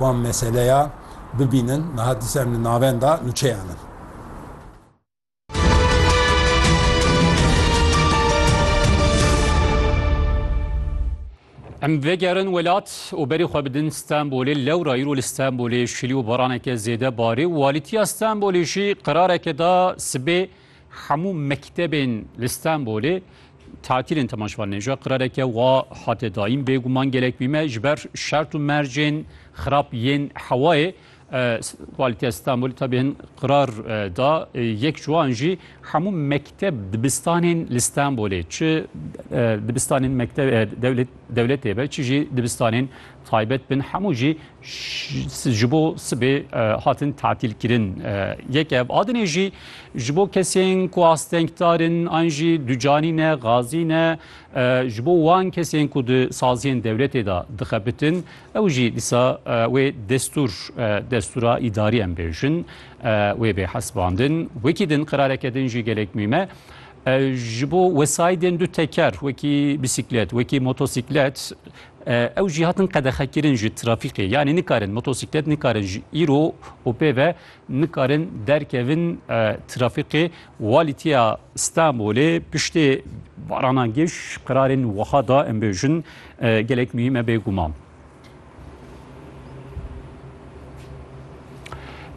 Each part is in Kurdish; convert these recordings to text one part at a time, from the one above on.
Wan meseleya bibînin niha di ser li navenda nûçeyan in. Em vegerin welat û berî xwe bidin Stenbolê. Lewra îro li Stenbolê şilî û baraneke zêde barî û alîtiya Stenbolê jî qerareke da sibê Hemû mektebên li Stenbolê tatilên tema ji van nêja qirareke wa hate dayîn bêguman gelek bîme ji ber şert û mercên xirab yên hewayê Valîtiya Stenbolê tabi hin qirar da yek ji wan jî hemû mekteb dibistanên li Stenbolê çi dibistanên mekteb dewlet dewletê be çi jî dibistanên taybet bin hemû jî ji bo sibê hatin tatîlkirin. Yek ev adinê jî ji bo kesên ku astengdar in an jî ducanî ne, gazî ne ji bo wan kesên ku di saziyên dewletê de dixebitin ew jî dîsa wê destûr destûra îdarî em bêjin wê bê hesibandin. Wekî din qerareke din jî gelek mîm e. Ji bo wesayîdên du teker wekî bîsîklet, wekî motosîklet Ew jî hatin qedexekirin ji trafîkê. Yanî nikarin motosîklet nikarin ji îro û pê ve nikarin derkevin trafîkê. Walîtiya Stenbolê piştê barana giş qirarên wiha da em bêjin gelek muhîm e bêguman.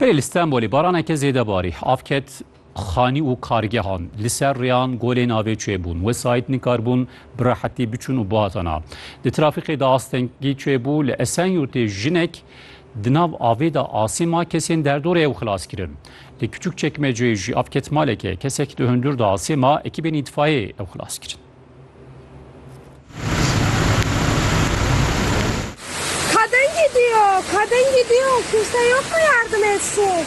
Belê li Stenbolê baraneke zêde barî. Av ket Xanî û kargehan li ser rêyan golê navê çêbûn. Wesayît nikaribûn bi rehetî biçûn û bihatana. Di trafîkê de astengî çêbû. Li Esenyurtê jinek di nav avê de asê ma kesên derdorê ew xilas kirin. Li Kiçûkçekmeceyê jî av ket maleke. Kesek di hundur de asê ma ekîbên îtfayê ew xilas kirin. Kadın gidiyor, kadın gidiyor. Kimse yok mu yardım etsin?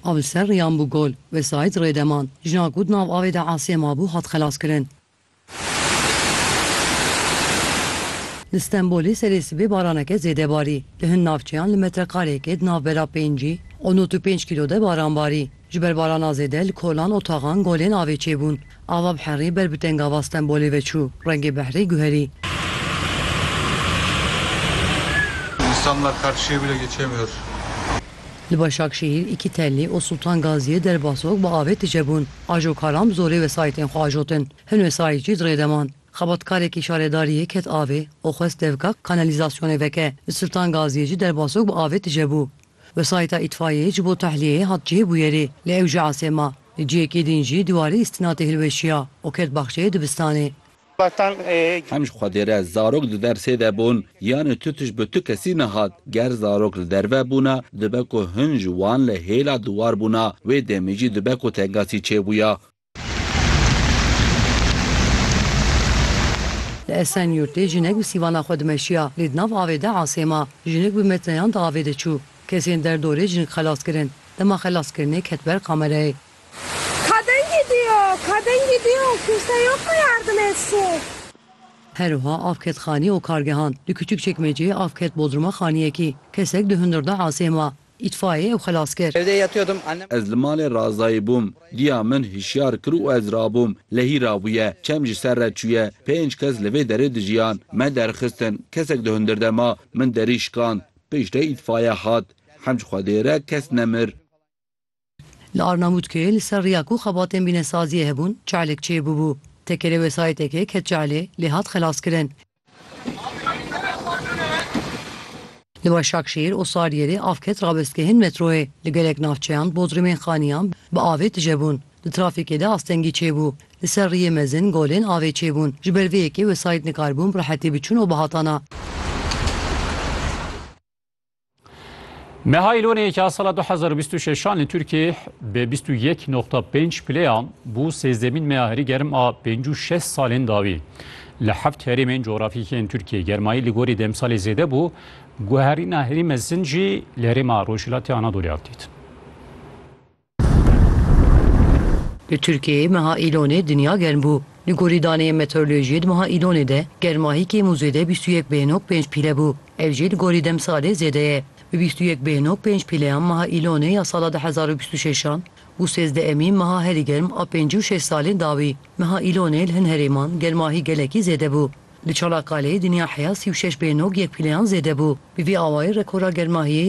A bi ser riyan bû gol. Wesayîd rê de man. Jina ku di nav avê de asê mabû hat xelaskirin. Li Stenbolê serê sibê baraneke zêde barî. Li hin navçeyan li metrekareyekê di navbera pêncî û nod û pênc kîlo de baran barî. Ji ber barana zêde li kolan û taxan golên avê çêbûn. Ava bi herî ber bi tengava Stenbolê ve çû, rengê behrê guherî. Însanlar her şê bile geçemîyor. Li Başakşehîr, Îkîtelli û Sultan Gaziyê derbasok bi avê tije bûn. Ajokaran bi zorê wesayîtên xwe ajotin. Hin wesayît jî di rê de man. Xebatkarekî şaredariyê ket avê û xwest devika kanelîzasyonê veke. Li Sultan Gaziyê jî derbasok bi avê tije bû. Wesayîta îtfaiyeyê ji bo tehliyeyê hat cihêbûyerê lê ew jî asê ma. Li cihekê din jî di warê îstinatê hilweşiya û ket baxçeyê dibistanê. Hem ji Xwedê re zarok di dersê de bûn, yanê tu tişt bi tu kesî nehat. Ger zarok li derve bûna dibe ku hin ji wan li hêla di war bûna, wê demê jî dibe ku tengasî çêbûya. Li Esenyurtê jinek bi sîvana xwe dimeşiya lê di nav avê de asê ma. Jinik bi metreyan di avê de çû. Kesên derdorê jinik xelas kirin. Dema xelaskirinê ket ber kamerayê. Her wiha av ket xanî û kargehan. Li Kiçikçekmeceyê av ket bodruma xaniyekî. Kesek di hundir de asê ma. Îtfaiyê û xelaskir. Ez li malê Razayê bûm. Diya min hişyar kir û ez rabûm. Lehî rabûye. Çem ji ser re çûye. Pênc kes li vê derê dijiyan. Me derxistin. Kesek di hundir de ma. Min derî şikand. Piştre îtfaiye hat. Hemd ji Xwedê re kes nemir. Li Arnavutköyê li ser riya ku xebatên bînesaziyê hebûn çalek çê bûbû. Tekerê wesayîtekê ket çalê lê hat xelaskirin. Li Başakşehîr û Sariyerê av ket rabestgehên metroyê. Li gelek navçeyan bodrûmên xaniyan bi avê tije bûn. Di trafîkê de astengî çêbû. Li ser riyê mezin golên avê çêbûn. Ji ber vê yekê wesayît nikaribûn bi rehetî biçûn û bihatana. Meha Îlonê yekê ya sala 2026 an li Tirkiyê bi 21.5 pileyan bû sêzdemîn meya herî germ a pêncî û şeş salên dawî. Li heft herêmên cografîkî yên Tirkiyê germayî li gorî demsalê zêde bû, guherîna herî mezin jî li herêma Rojhilatê Anadolê hat dîtin. Li Tirkiyeyê meha Îlonê dinya germ bû. Li gorî daneyên meteorolojiyê di meha Îlonê de germa hê kêm û zêde bîst û yek bêhnog pênc pîle bû. Ev jî li gorî demsalê zêde ye. Bi bîst û yek bêhnog pênc pîleyan meha Îlonê ya sala du hezar û bîst û şeş an û sêzdehemîn meha herî germ a pêncî û şeş salên dawî. Meha Îlonê li hin herêman germa hê gelekî zêde bû. Li Çanakkaleê dinya heya sî û şeş bêhnog yek pîleyan zêde bû. Bi vî awayî rekora germa hê